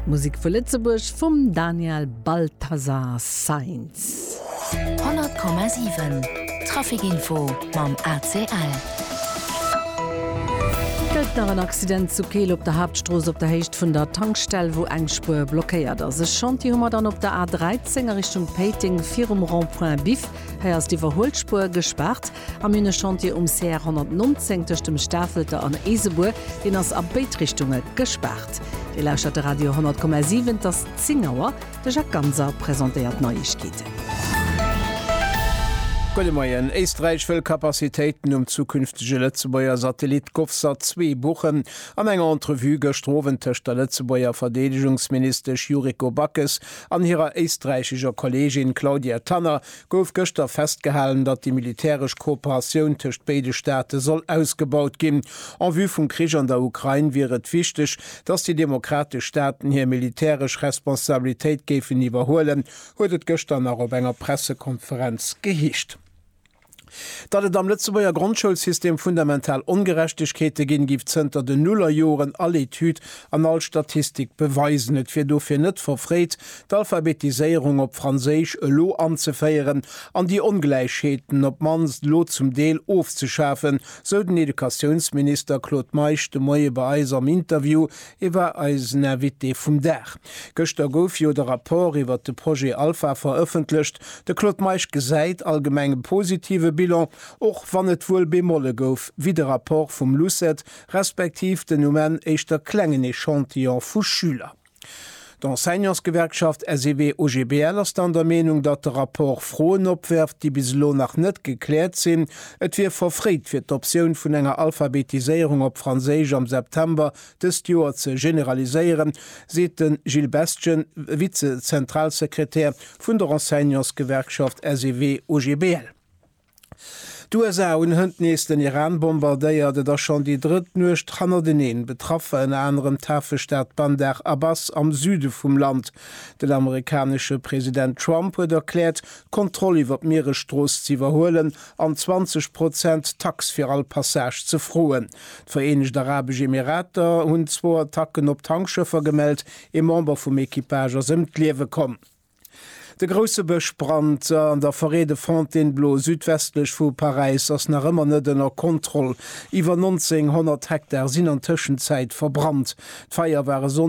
Musek vu Lëtzebuerg vum Daniel Balthasar Sainz. 100,7 Traficinfo mam ACL. Gëllt nach en Accident zu Keel op der Haaptstrooss op der Héicht vun der Tankstell, wou eng Spuer blockéiert ass. E Chantier hu mer dann op der A 13 a Richtung Péiteng virum Rond-point Biff. Hei ass d'Iwwerhuelspuer gespaart. Am hunn e Chantier um CR 119 tëscht dem Stafelter an Eesebuer. Deen ass a béid Richtunge gespaart. Dir lauschtert de Radio 10,7. Et ass 10 Auer. De Jacques Ganser presentéiert d'Neiegkeeten. Gudde Moien. Éisträich wëll Capacitéiten um zukünftege Lëtzebuerger Satellit Govsat 2 buchen. An enger Entrevue gëschter Owend tëscht der Lëtzebuerger Verdeedegungsministesch Yuriko Backes an hirer éisträichescher Kolleegin Claudia Tanner gouf gëschter festgehalen, datt déi militäresch Kooperatioun tëscht béide Staate soll ausgebaut ginn. En vue vum Krich an der Ukrain wier et wichteg, datt déi demokratesch Staaten hir militäresch Responsabilitéit géifen iwwerhuelen, huet et gëschter nach op enger Pressekonferenz geheescht. Datt et am Lëtzebuerger Grondschoulsystem fundamental Ongerechtegkeete ginn, géif zënter den Nullerjoren all Etüd an all Statistik beweisen. Et wier dofir net verfréit, d'Alphabetiséierung op Franséisch elo anzeféieren an déi Ongläichheeten op d'mannst elo zum Deel ofzeschafen, sou den Educatiounsminister Claude Meisch de Moie bei eis am Interview. E war eisen Invité vum Dag. Gëschter gouf jo de Rapport iwwert de Projet Alpha verëffentlecht. De Claude Meisch gesäit allgemeng e positive Bilan, och wann et wuel Bemolle gouf, wéi de Rapport vum LUCET respektiv den um Enn éischter klengen Echantillon vu Schüler. D'Enseignantsgewerkschaft SEW-OGBL ass dann der Meenung, datt de Rapport Froen opwerft, déi bis elo nach net gekläert sinn. Et wier verfréit, fir d'Optioun vun enger Alphabetiséierung op Franséisch am September dëst Joer ze generaliséieren, seet de Gilles Bestgen, Vize-Zentralsekretär vun der Enseignantsgewerkschaft SEW-OGBL. D'USA hunn hënt nees den Iran bombardéiert. Et ass schonn déi drëtt Nuecht hannerteneen. Betraff war ënner anerem d'Hafestad Bandar Abbas am Süde vum Land. Den amerikanesche President Trump huet erkläert, d'Kontroll iwwer d'Mieresstrooss ze iwwerhuelen an 20 Prozent Tax fir all Passage ze froen. D'Vereenegt Arabesch Emirater hunn zwou Attacken op Tankschëffer gemellt, ee Member vum Equipage ass ëm d'Liewe komm. De grousse Bëschbrand an der Forêt de Fontainebleau südwestlech vu Paräis ass nach ëmmer net ënner Kontroll. Iwwer 1.900 Hektar sinn an Tëschenzäit verbrannt. D'Feier war e Sonndeg